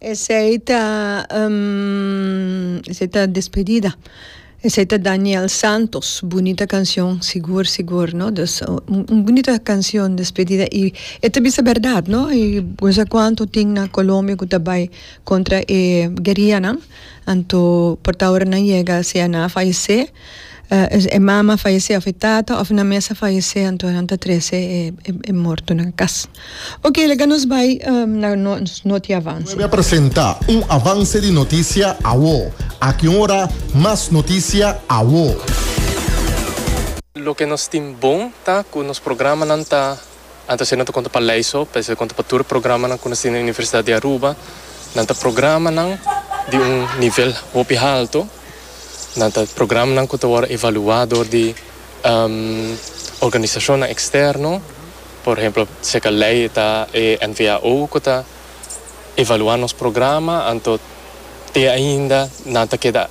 Esei ta esei ta despedida esei ta Daniel Santos bunita canción sigur sigur no dus un bunita canción despedida y e ta bisa berdad no y cuanto tin na Colombia cu ta bay contra e guerianan Anto por ta ora nan yega si nan a fayesé, e mama a fayesé of e tata of nan mes a fayesé anto nan ta trese e morto na cas. Oke laga nos bay na nos noti avanse. Nueve a presenta un avanse di noticia awo. Aki ora mas noticia awo. Loke nos tin bon ta cu nos programanan ta Anto asina ta konta pa lei so, p'esei ta konta pa tur e programanan ku nos tin den Universidat di Aruba. Nan ta programanan di un nivel hopi haltu. Nan ta programanan ku ta wòrdu evaluá dor di organisashonnan eksterno. Por ehemplo, seka lei e ta e NVAO ku ta evaluá nos programa, anto te ainda nan ta keda.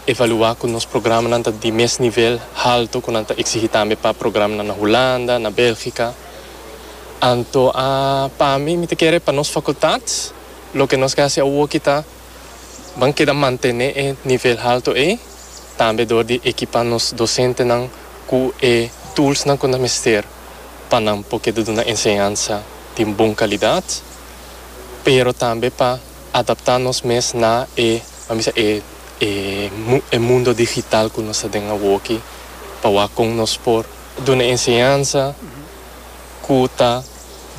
evaluá ku nos programanan ta di mes nivel haltu ku nan ta eksigí tambe pa programanan na Hulanda, na Bèlgika. Anto a pa mi, mi ta kere pa nos fakultat loke nos ke hasi awoki ta ban keda mantené e nivel haltu ei, tambe dor di ekipá nos dosentenan ku e tulsnan ku nan mester pa nan por keda duna enseñansa di un bon kalidat, pero tambe pa adaptá nos mes na e, pa mi sa, e e mundo digital ku nos ta den awoki, pa wak kon nos por duna e enseñansa ku ta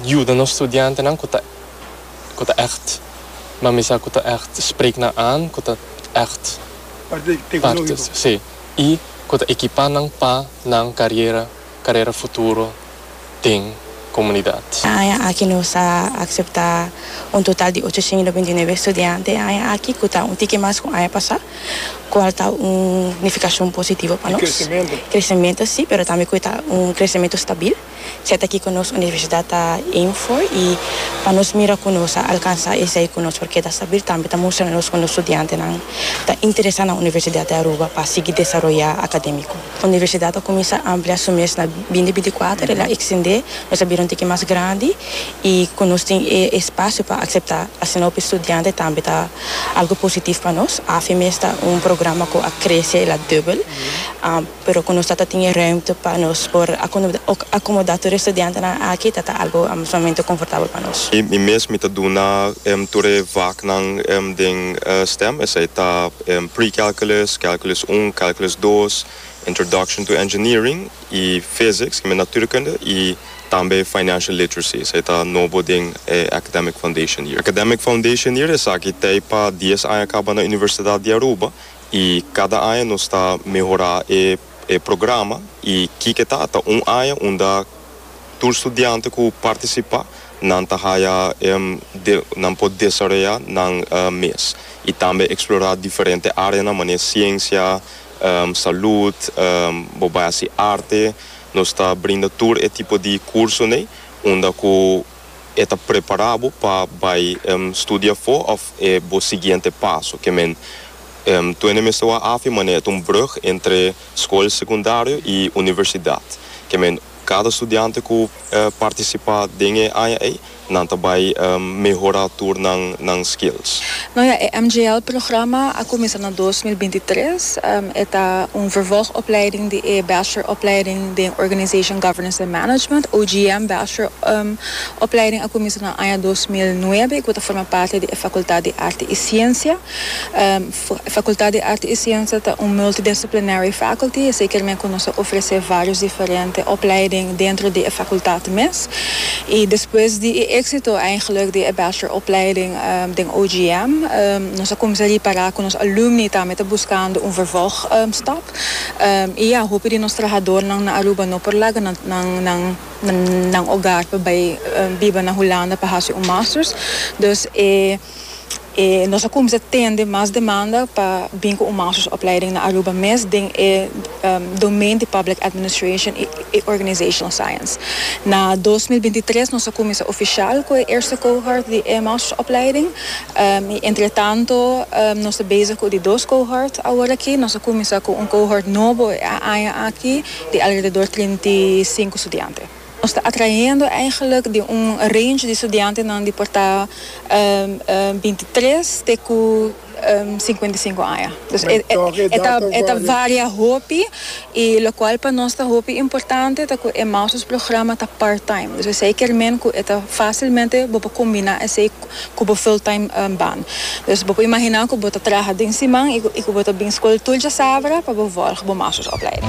yuda nos studiantenan ku ta ku ta ègt, pa mi sa, ku ta ègt sprek nan an, ku ta ègt partes, si, i ku ta ekipá nan pa nan kariera. carera futuro den comunidad. E aña aki nos a acepta un total di ochociento binti y nueve estudiante e aña aki cu ta un tiki mas cu aña pasa, cual ta un nificacion positivo pa nos, crecemento si, pero tambe cu ta un crecemento stabil, siat aki cu nos universidad ta aim for y pa nos mira cu nos a alcansa esey cu nos por keda stabil tambe ta mustra nos cu nos studiantenan ta interesa na Universidad di Aruba pa sigui desaroya academico. Universidat a kuminsá amplia su mes na bindi binti-kuater, el a ekstendé, nos a bira un tiki mas grandi i ku nos tin e espasio pa akseptá asina hopi studiante tambe ta algu positif pa nos. Afe mes ta un programa ku a krese la dubel, pero ku nos ta ta tin e rùmte pa nos por akomodá tur e studiantenan aki ta ta algu sumamente konfortabel pa nos. Mi mes mi ta duna tur e vaknan den stem, esei ta. Pre-calculus, Calculus un, Calculus dos, Introduction to Engineering y Physics, ki mester Natuurkunde, y tambe Financial Literacy, esaki ta nobo den e Academic Foundation Year. Academic Foundation Year esaki ta e pa dies aña kaba na Universidad di Aruba y kada aña nos ta mehora e programa y kiko ta ta un aña unda tur studiante ku partisipá nan ta haya nan por desaroyá nan mes i tambe eksplorá diferente áreanan manera siensia, salud, bo bai hasi arte. Nos ta brinda tur e tipo di kursonan unda ku e ta prepará bo pa bai studia afó òf e bo siguiente paso. Ke men tuene mester wak afe manera e ta un brùg entre skol sekundario i universidat. Ke men kada studiante ku partisipá den e aña ei, nan ta bai mehorá tur nan skills. No ja, e MJL programa a kuminsá na dos mil binti tres. E ta un vervòg opleiding di e Bachelor opleiding den Organization Governance and Management, OGM, Bachelor opleiding a kuminsá na aña dos mil nuebe i ku ta forma parti di e Fakultat di Arte i Siensia. E Fakultat di Arte i Siensia ta un multidisciplinary faculty, esei kier mei ku nos a ofresé vários diferente opleiding dentro di e fakultat mes. I despues di e éksito, eindelijk, di e Bachelor opleiding, Den OGM nos a cuminsa ripara cu nos alumni tambe ta buscando un vervolg stop y ya hopi di nos trahadornan na Aruba no por laga nan hogar pa bay biba na Hulanda pa haci un masters dus nos a cuminsa tende mas demanda pa bin cu un masters opleiding na Aruba mes den e domein di public administration y e Organizational Science. Na dos mil binti tres nos a cuminsa oficial cu e eerste cohort di e Master Opleiding y entretanto nos ta bezig cu di dos cohort awor aki. Nos a cuminsa cu un cohort nobo e aña aki di alrededor trinta y sinku studiante. Nos ta atrahendo eigenlijk di un range di studiantenan di por ta binti tres te cu cincuenta y cinco aña. Dus e e ta varia hopi y locual pa nos ta hopi importante ta cu e mouse's programa ta part time. Dus esey kier men cu e ta facilmente bo por combina esey cu bo full time baan. Dus bo por imagina cu bo ta traha den siman y cu bo ta bin school tur djasabra pa bo volg bo mouse's opleiding.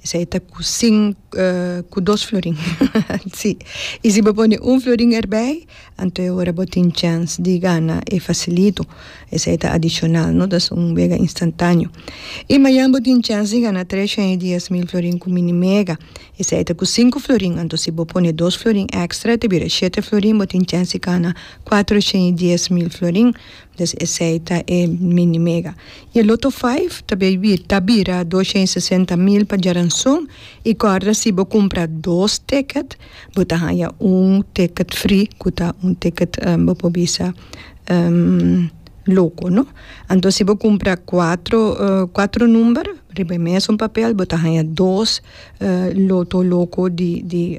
Esei ta ku sin ku dos florin si i si bo pone un florin erbei anto e ora bo tin chèns di gana e fasilito esei ta adishonal no ta su un mega instantaneo i mañan bo tin chèns di gana tres shen i dies mil florin ku mini mega esei ta ku sinku florin anto si bo pone dos florin èkstra ta bira shete florin bo tin chèns di gana kuatro shen i dies mil florin. Des esei ta e mini mega. I e loto five ta ta bira dos shen sesenta mil pa djaranson i kòrda si bo kumpra dos ticket bo ta haña un ticket free ku ta un ticket bo por bisa loco no anto si bo kumpra kuatro kuatro number riba e mesun papel bo ta haña dos loto loco di di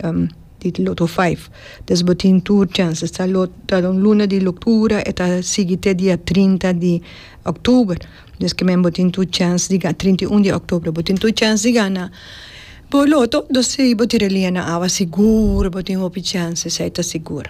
di Lotto Five. Des bo tin tur chances. Ta ta un luna di loctura e ta sigui te dia trinta di octuber. Des ki men bo tin tur chance di gana, trinta i un di octuber bo tin tur chance di gana bo lotto. Bo tira e lia na awa sigur bo tin hopi chances, ei ta sigur.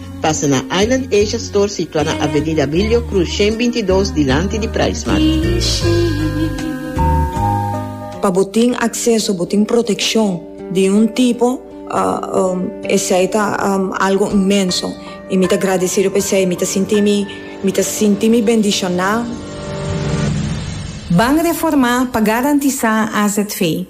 Pasa na Island Asia Store situa na Avenida Abilio Cruz shen binti dos dilanti di Pricemart. Pa bo tin acceso, bo tin proteccion di un tipo, esey ta algo inmenso y mi ta agradecido pa esey, mi ta sinti mi, mi ta sinti mi bendiciona. Ban reformá pa garantizá AZV.